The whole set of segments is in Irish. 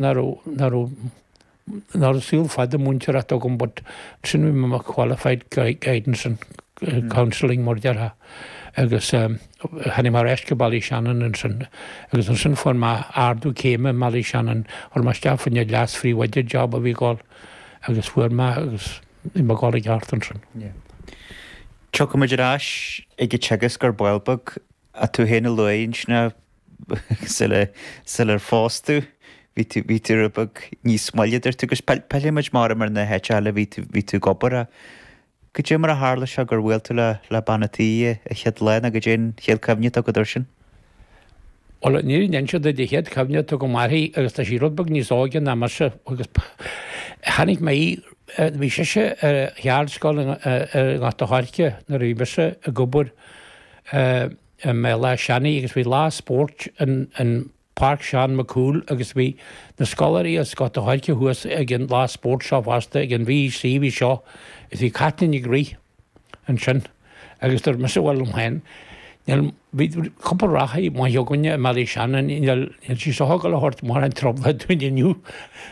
ná saol fada múinteoireachta agam but sin bhí mé mar qualified guidance and counselling mar a déarfá agus tháinig mé ar ais go Béal Átha Seanaidh ansin agus ansin fuair mé ardú céime i mBéal Átha Seanaidh, chuir mé isteach faoi choinne leas-phríomhoide job a bhí ag dul agus fuair mé é agus bhí mé ag dul i gceart ansin. Tiocfaimid ar ais ag an teagasc ar ball beag ach tú féin a luaigh ansin. sul ar phós tú bhí tú rud beag níos moille a dúirt tú agus pillfimid m'anam ar na háiteanna eile a bhí tú ag obair a. Goidé mar a tharla sé gur bhuail tú le bean an tí a chéad lá ná goidé an chéad cuimhne atá agat ar sin? Bhuel is cuimhin liom an chéad cuimhne atá agam uirthi agus tá sí rud beag níos óige ná mise agus chonaic mé í bhí sise ar cheardscoil i nGort a' Choirce nuair a bhí mise ag obair i mBéal Átha Seanaidh agus bhí lá spóirt in in Páirc Seán Mac Cumhaill agus bhí na scoláirí as Gort a' Choirce thuas ag an lá spóirt seo fosta ag an V.E.C. a bhí seo is bhí Caitlín ag rith ansin agus dúirt mise bhuel liom féin níl bhí cúpla reathaí maithe againne i mBéal Átha Seanaidh níl níl sí sin ag gabháil a thabhairt mórán trioblóide dúinn inniu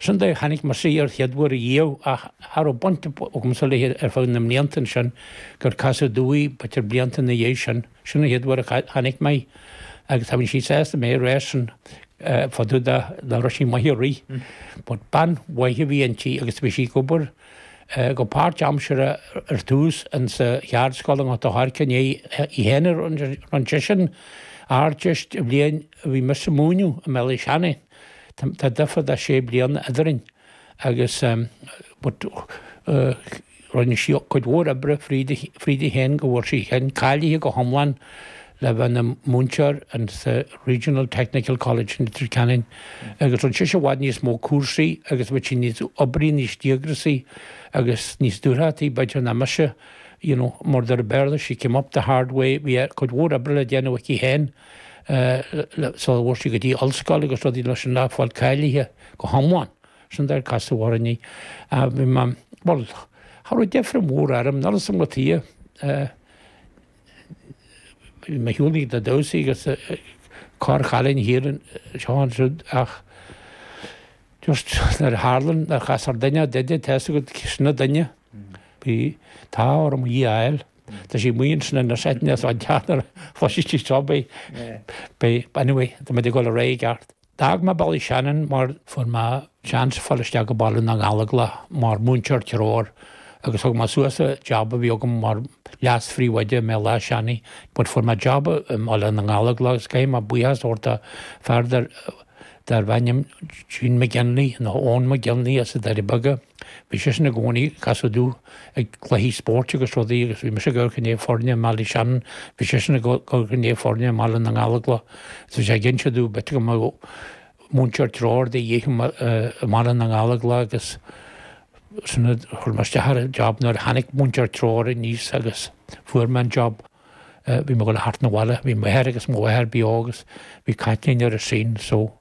sin dé chonaic mise an chéad uair riamh ach cha raibh baint agamsa léi ar feadh na mblianta ansin gur casadh domh í b'fhéidir blianta ina dhiaidh sin, sin an chéad uair a chonaic mé í agus tá sí sásta mé a rá sin fá dtaobh de, go raibh sí maith ag rith. But bean mhaith a bhí inti agus bhí sí ag obair go páirtaimseartha ar tús in sa cheardscoil i nGort a' Choirce i ndiaidh í féin a rinne sise an Ardteist an bhliain a bhí mise ag múineadh i mBéal Átha Seanaidh, tá difear de sé bliana eadrainn. agus but rinne sí cuid mhór oibre fríthi féin go bhfuair sí féin cáilithe go hiomlán le bheith ina múinteoir in sa Regional Technical College in Leitir Ceanainn agus rinne sise i bhfad níos mó cúrsaí agus bhí sí níos oibrí níos díograsaí agus níos dúthrachtaí b'fhéidir ná mise you know mar a deir an Béarla she came up the hard way bhí cuid mhór oibre le déanamh aici féin siar b'éigean di go dtí ollscoil agus rudaí léithi a fháil cáilithe go hiomlán, sin an dóigh ar casadh orainne, bhuel, cha raibh deifir mhór orm, níl a fhios agam cad chuige, bhí mé ag siúl ag na damhsaí agus corr chailín thart anseo is ansiúd ach just nuair a tharla nuair a chastar duine ort, tá's agat, an duine, bhí an t-ádh orm í a fháil. Tá sí maíonn sin an nurse eithne atá ag teacht nuair a chloiseas sí seo beidh beidh anyway tá muid ag dul ar aghaidh i gceart. D'fhág mé Ballyshannon mar fuair mé seans fáil isteach go Baile na nGallóglach mar múinteoir treoir agus thug mé suas an jab a bhí agam mar leas phríomhoide i mBéal Átha Seanaidh but fuair mé jab i mBaile na nGallóglach agus caithfidh mé buíochas a thabhairt do fear dar darbh ainm Gene McGinley nó Eoghan McGinley as na Doirí Beaga. Bhí seisean i gcónaí ag casadh domh ag cluichí spóirt agus rudaí agus bhí mise ag amharc i ndiaidh foirne i mBallyshannon, bhí seisean ag amharc i ndiaidh foirne i mBaile na nGallóglach agus bhí sé ag inse domh b'fhéidir go mbeadh múinteoir treoir de dhíth i mBaile na nGallóglach agus sin a chuir mé isteach ar an job. Nuair a tháinig múinteoir treoir aníos agus fuair mé an job, bhí mé ag dul thart 'na bhaile, bhí m'athair agus mo mháthair beo agus bhí Caitlín ar an scene so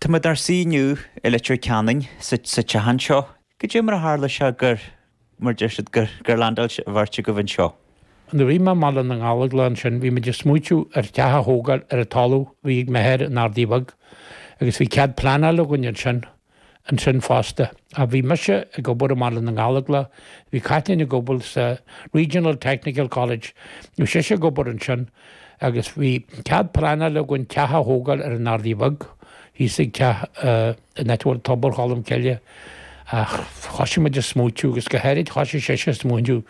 Tá muid inár suí inniu i Leitir Ceanainn, sa teach anseo. Goidé mar a tharla sé gur, mar deir siad, gur, gur landáil an bheirt agaibh anseo? Nuair a bhí mé i mBaile na nGallóglach ansin, bhí muid ag smaoitiú ar theach a thógáil ar an talamh a bhí ag m'athair in Ardaidh Bheag, agus bhí cead pleanála againn ansin, ansin fosta. Ach bhí mise ag obair i mBaile na nGallóglach, bhí Caitlín ag obair sa Regional Technical College, bhí sise ag obair ansin, agus bhí cead pleanála againn teach a thógáil ar an Ardaidh Bheag, thíos ag teach an áit a bhfuil tobar Cholm Cille, ach thoisigh muid a smaoitiú, agus go háirid thoisigh sise a smaoitiú,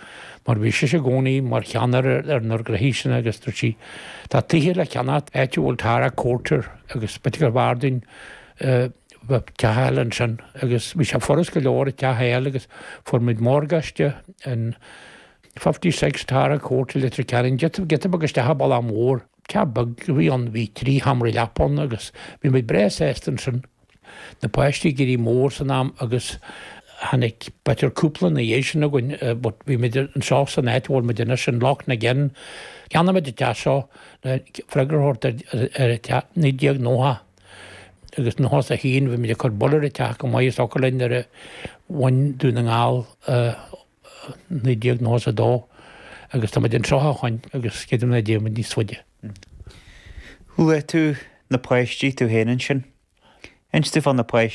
mar bhí sise i gcónaí mar cheannaire ar na gnoithe sin, agus dúirt sí, Tá tithe le ceannacht áit a bhfuil Tara Court, agus b'fhéidir gurbh fhearr dúinn bheith teach a fháil ansin, agus bhí sé furast go leor teach a fháil, agus fuair muid morgáiste in. Fifty six Tara Court i Leitir Ceanainn, Giota giota beag isteach sa bhaile mhór. Teach beag a bhí ann. Bhí trí sheomraí leapa ann agus bhí muid breá sásta ansin. Na páistí ag éirí mór san am agus tháinig beirt, cúpla, ina dhiaidh sin againn but bhí muid anseo san áit a bhfuil muid anois in Loch na gCeann. Cheannaigh muid an teach seo le freagra a thabhairt ar an cheist 1991 bhí muid ag cur bail ar an teach go maith is ag obair linn nuair a bhain Dún na nGall a 1992 agus táimid anseo ó shin agus creidim nach dtéann muid níos faide. Luaigh tú na páistí, tú féin ansin. Inis dúinn fá na páistí.